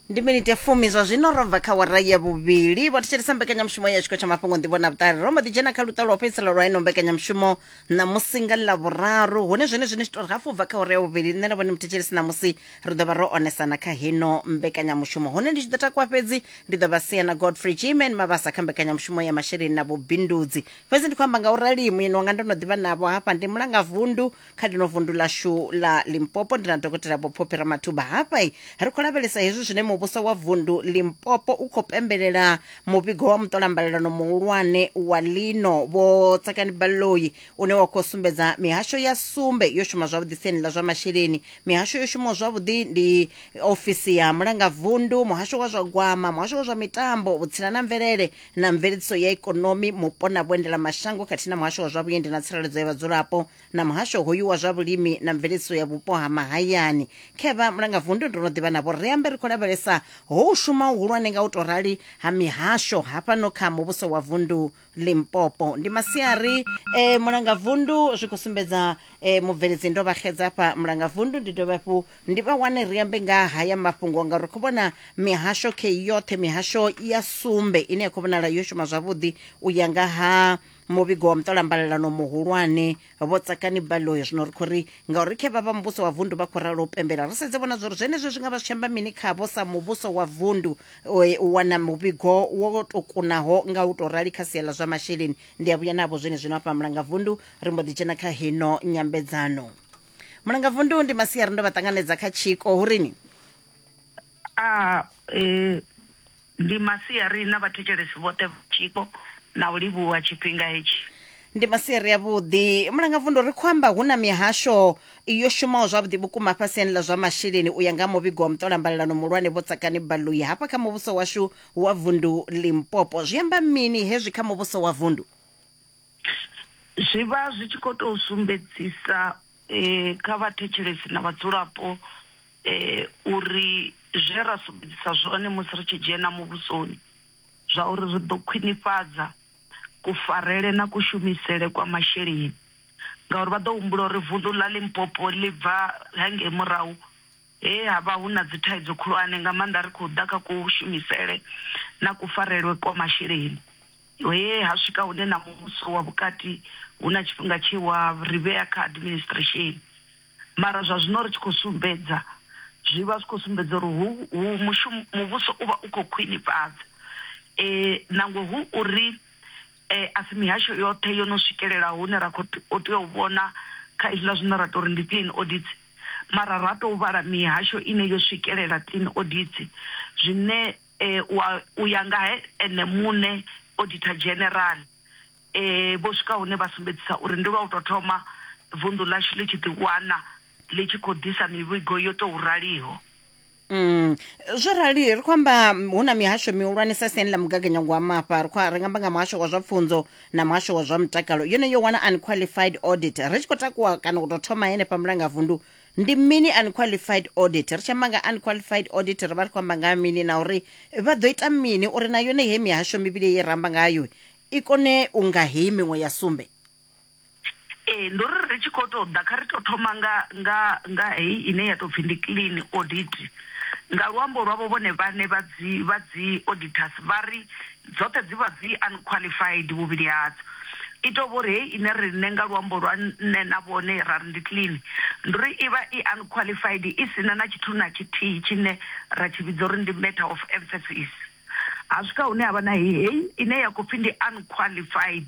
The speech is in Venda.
ndi miniti ya fumi zwa zwino ro bva kha wara ya vhuvhili vho thetshelesa mbekanyamushumo ya tshiko tsha mafhungo nḓivho na vhuṱali ro mbo ḓi dzhena kha luṱa lwa u fhedzisela lwa ino mbekanyamushumo ṋamusi nga ḽa vhuraru hune zwone zwine zwi tori hafu bva kha wara ya vhuvhili nṋe na vhone muthetshelesi ṋamusi ri ḓo vha ro onesana kha heno mbekanyamushumo hune ndi tshi ḓo takuwa fhedzi ndi ḓo vha sia na godfrey gman mavhasa kha mbekanyamushumo ya masheleni na vhubindudzi fhedzi ndi khou amba nga u rali muyeni wanga ndo no ḓivha navho hafha ndi mulangavundu kha ḽino vundu ḽashu ḽa limpopo ndi na dokotela vhophophi ramathuba hafhai ri khou lavhelesa hezwi zwine muvhuso wa vundu limpopo u khou pembelela muvhigo wa muṱolambalelano muhulwane wa lino vho tsakani baloi une wa khou sumbedza mihasho ya sumbe yo shuma zwavhuḓi siani ḽa zwa masheleni mihasho yo shumaho zwavhuḓi ndi ofisi ya mulangavundu muhasho wa zwa gwama muhasho wa zwa mitambo vhutsila na mvelele na mveledziso ya ikonomi mupo na vhuendela mashango khathihi na muhasho wa zwa vhuendi na tsireledzo ya vhadzulapo na muhasho hoyu wa zwa vhulimi na mveledziso ya vhupo ha mahayani khevha mulanga vundu ndo no ḓivha navho ri ambe ri khou lavhelesa ho u shuma uhulwane nga u tou rali ha mihasho hafhano kha muvhuso wa vundu limpopo ndi masiari e, mulanga vundu zwi khou sumbedza e, mubveledzi ndo vha xedza hafha mulanga vundu ndi dovhe hafhu ndi vha wane ri ambe nga haya mafhungo ngauri ri khou vhona mihasho khe yoṱhe mihasho ya sumbe ine ya khou vhonala yo shuma zwavhuḓi u ya nga ha muvhigo wa muṱolambalelano muhulwane vho tsakani baloyi zwino ri khou ri ngauri khe vha vha muvhuso wa vundu vha khou ralo u pembela ri sedze vhona zwori zwenezwo zwi nga vha zwi tshi amba mini khavho sa muvhuso wa vundu e, u wana muvhigo wo to kunaho nga u tou rali kha sia ḽa zwa masheleni ndi a vhuya navho zwene zwino afha mulanga vundu ri mbo ḓi dzhena kha hino nyambedzano mulanga vundu ndi masiari ndo vha ṱanganedza kha tshiko hurini A E ndi masiari na vhathetshelesi vhoṱhe vha tshiko na u livhuwa tshifhinga hetshi. ndi masiari avhuḓi mulangavundu ri khou amba hu na mihasho yo shumaho zwavhuḓi vhukuma hafha siani ḽa zwa masheleni u ya nga ha muvhigo wa muṱolambalelano muhulwane vho tsakani baloi hafha kha muvhuso washu wa vundu limpopo zwi amba mini hezwi kha muvhuso wa vundu Zwi vha zwi tshi khou tou sumbedzisa eh, kha vhathetshelesi na vhadzulapo uri zwe ra sumbedzisa zwone musi ri tshi dzhena muvhusoni zwa uri ri ḓo khwinifhadza kufarele na kushumisele kwa masheleni ngauri vha ḓo humbula uri vunḓu ḽa Limpopo ḽi bva hangei murahu he ha vha hu na dzi thaidzo khulwane nga maanḓa ri khou ḓa kha kushumisele na kufarelwe kwa masheleni he ha swika hune na muvhuso wa vhukati hu na tshifhinga tshe wa ri vhea kha administration. mara zwa zwino ri tshi khou sumbedza zwi vha zwi khou sumbedza uri hu mushumo muvhuso u vha u khou khwinifhadza nangwe hu uri a si mihasho yoṱhe yo no swikelela hune ra kho tea u vhona kha hezwiḽa zwine ra tori ndi clean audit mara ra tou vhala mihasho ine yo swikelela clean audit zwine wa u ya nga he ene muṋe auditor dzhenerala vho swika hune vha sumbedzisa uri ndi lwa u tou thoma vunḓu ḽashu ḽi tshi ḓiwana ḽi tshi khou ḓisa mivhigo yo tou raliho. Mm. Zwo rali ri khou amba hu na mihasho mihulwanesa siani ḽa mugaganyagwama afha ri khou ri nga amba nga muhasho wa zwa pfunzo na muhasho wa zwa mutakalo yone yo wana unqualified audit ri tshi khou takuwa kana u tou thoma henefha mulangavundu ndi mini unqualified audit ri tshi amba nga unqualified audit ri vha ri khou amba nga mini na uri vha ḓo ita mini uri na yone he mihasho mivhili ye ra amba ngayo i kone u nga heyi miṅwe ya sumbe? Ee, ndo ri ri tshi khou tou ḓa kha ri tou thoma nga nga nga heyi ine ya tou pfi ndi clean audit. Nga luambo lwavho vhone vhaṋe vha dzi vha dzi auditors vha ri dzoṱhe dzi vha dzi unqualified vhuvhili hadzo. I tou vho ri heyi ine riṋe nga luambo lwa nṋe na vhone ra ri ndi clean, ndi uri i vha i unqualified i si na na tshithu na tshithihi tshine ra tshi vhidza uri ndi matter of emphasis. ha swika hune ha vha na heyi ine ya khou pfhi ndi unqualified